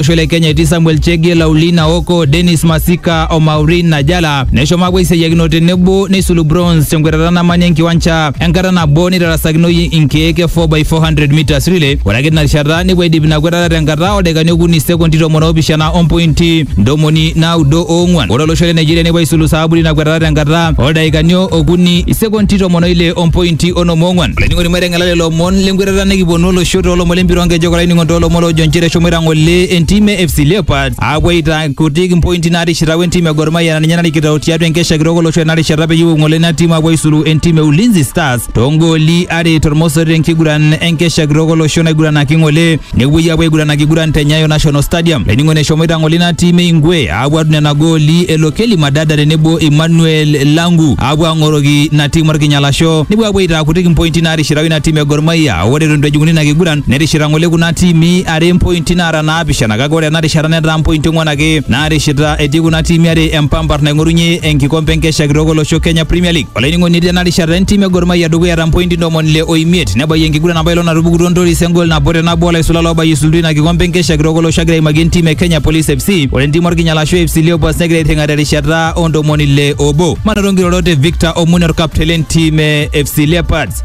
olosho le Kenya etii Samuel Chege, Laulina Oko, Dennis Masika o Maureen Najala neshomo apuo aiseyiakino tenebo neisulu bronze tenkwetata namanya enkiwancha enkata nabo neitarasakinoyu inkeek e 4x400 meters relay. Ore ake tina rishata nepuo aidip ina kwetata tenkata oldaikani okuni sekondi tomon oopishana ompointi ntomoni naudo oong'wan. Ore olosho le Nigeria nepuo aisulu saabu tina kwetata tenkata oldaikani okuni sekondi tomon oile ompointi onom oong'wan. Olainining'oni Ngala lelo omon lenkwetata nikiponu olosho toolomon lempira onkejek olainining'oni toolomon loojo nchere eshomoita ng'ole entim e FC Leopards aapuo aitakutik impointi naatishita we ntim e Gor Mahia naa ninye narikito tiatua enkesha kitok olosho ena rishata peyie epuo ng'ole ina tim aapuo aisulu entim e Ulinzi Stars toongooli are tormosori tenkiguran enkesha kitok olosho naiguranaki ng'ole nepuoi apuo aiguran akiguran te Nyayo National Stadium. Laining'oni eshomoita ng'ole ina tim e Ingwe aapuo atum nena gooli e Lokeli Madada tenebo Emmanuel Langu aapuo ang'oroki ina tim orkinyalasho nepuo apuo aitaa kutik impointi naatishirau ina tim e Gor Mahia. Ore eton eitu ejing'uni ina kiguran netishira ng'ole kuna tiimi are impointi naara naapishana kake ore ena rishata netaa mpointi ong'wan ake naarishita etii kuna tiimi are empampar naing'orunye enkikompe enkesha kitok olosho Kenya Premier League. Olainining'oni tena rishata entim e Gor Mahia dukuya ta mpointi ntomoni ile o imiet nebayie enkiguran apa ilo natupukutuo Ntoris engol nabo te nabo olaisula loobayie isultu ina kikompe enkesha kitok olosho agira aimaki entim e Kenya Police FC ore entim Orkinyala ashu AFC Leopards negira airring'a terishata o ntomoni ile obo. Manoto nkirorot e Victor Omune orkapteni lentim e FC Leopards.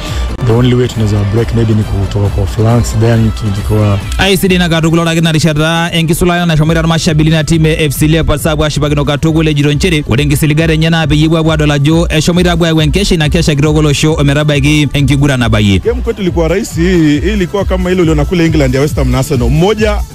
the only way tunaweza break maybe ni kutoka kwa flanks then tukikuwa aisidai na katukul ore ake narishata enkisulata nashomoita irmashabili na timu e fc leopards apuo ashipakino katukul ejito nchere ore nkisiligat enye naa peyie epuo apuo adol ajo eshomoita apuo ayau enkesha ina kesha kitok olosho ometabaiki enkiguran nabayie Game kwetu ilikuwa rahisi, hii hii ilikuwa kama ile uliona kule England ya West Ham na Arsenal, mmoja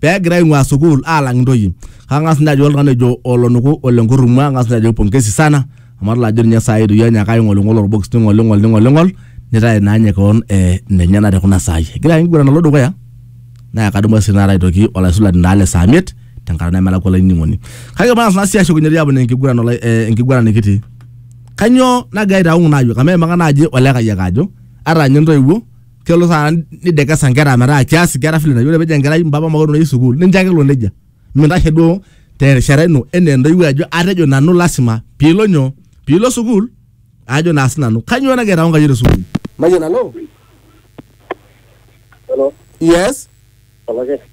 pee egira aing'ua sukuul aalang intoyie kang'as ninye ajo oltung'ani ojo olonuku ole nkurrumwa ang'as ninye ajo pongezi sana amu adol ajo ninye saai itu ianya ake aing'oling'ol orbokis ning'oling'ol ning'oling'ol nitae naa ninye kewon eh, nenye ena tekuna saai egira ake enkiguran alo dukuya naa kadumu sii taata aitoki olaisulani naa le saa miet tenkata nemelakua olainining'oni kake mang'as naa sii ashukunye dii aponaa enkiguran olai- eh, enkiguran nikitii kanyoo nagira aitaung naa yiok amu eimaka naaji olekayiak ajo ata ninye intoiwuo kelo saa nidekesa nkera metaa kias nkera vile nayieu ore pejo enkerai mpapa makolo nayieu sukuul nincho ake elo nejia mintashe duo terishata ino enaa entoiwuoi ajo atejo nanu lasima piilo nyoo piilo sukuul ajo naa sinanu kanyoo nagira aitau nkayiok te sukuul mayian alo Hello, yes olake.